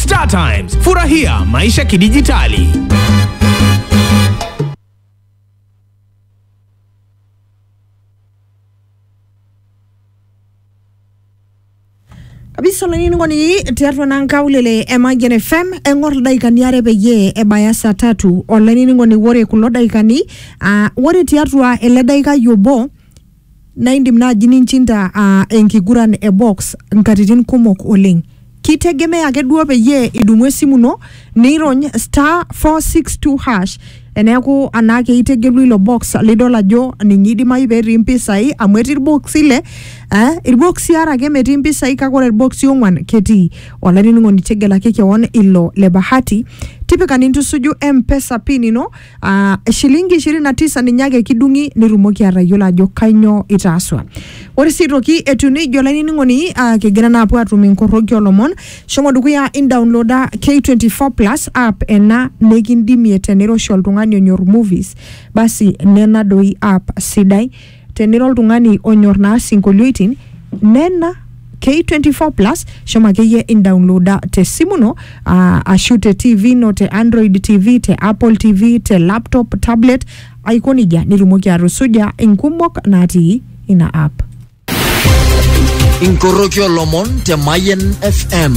Star Times, furahia maisha kidijitali. kabisa olainining'oni tiatua naa nkaulele e Mayian FM eng'or ildaikani are peyie ebaya saa tatu olainining'oni ore kulo daikani aa ore tiatua ele daikai obo Naa indim naaji ninchinda aa enkiguran e box nkatitin kumok oleng. Keitegemea ake duo peyie idumu esimu ino nirony star four six two hash eneeku anaake itegelu ilo box lidol ajo ninye eidimayu peetii mpisai amu etii ilboksi ile, ee ilboksi aare ake metii mpisai kake ore ilboksi ong'wan ketii. Olainining'oni tegelaki kewon ilo le bahati, tipika nintusuju mpesa pin ino Ah, shilingi ishirini na tisa ninye ake kidung'i nitumoki atayiolo ajo kainyoo itaaswa ore sii aitoki etiu neijia olainining'oni ah, kigira naa apuo atum inkorroki olomon shomo dukuya indaunloda K24 plus app ena nikindimie teniroshi oltung'ani onyor movies basi nena doi app sidai tenira oltung'ani onyor naa sinkolioitin nena K24 plus shomo akeyie indownloada te simu ino ah, ashu te TV ino te Android TV te Apple TV te laptop tablet aiko nejia nitumoki atusuja inkumok natii ina app. inkoroki olomon te Mayen FM.